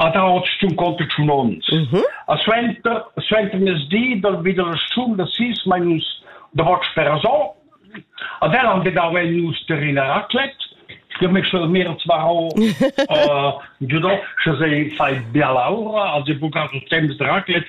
Ad autst ün conto tschun ons. E suenter suentermezdi dal vi da la stun da sis main nus davot Sperasò. Ad el han dau en nus terrina raclette. Io mi sche mir zwar ho giudo, sche se fai biala ura, also buca so temps de raclette,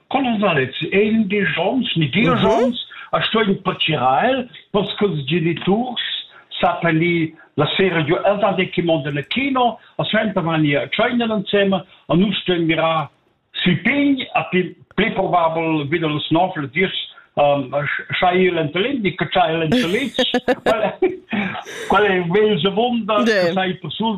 Colosalet è il Dijon, Nidijon, a sto in Pociral, parce que ils geniturs s'appelli la sera giu els han che mondo nel kino a sventa mani a China insieme a nus dem mira si pign a pli probabel wieder los nofel dis Shail and Lindy, che Shail and Liz, qual è il vegl vunda che sai per sul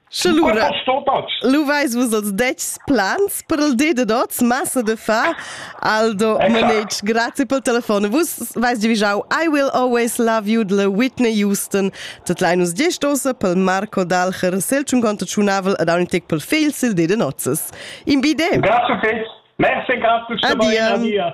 Lura, lu veis vus els detgs plans per il di dad oz, massa de fa. Aldo Manetsch, grazie per il telefon. Vus veis divigiau I will always love you de Whitney Houston. Tot lein us gestosa pel Marco Dalcher, seltschun conto tschunavel ed aun tic pel fil sil di de nozzes. In bide. Grazie, Kate. Merci, grazie. Adia. Adia.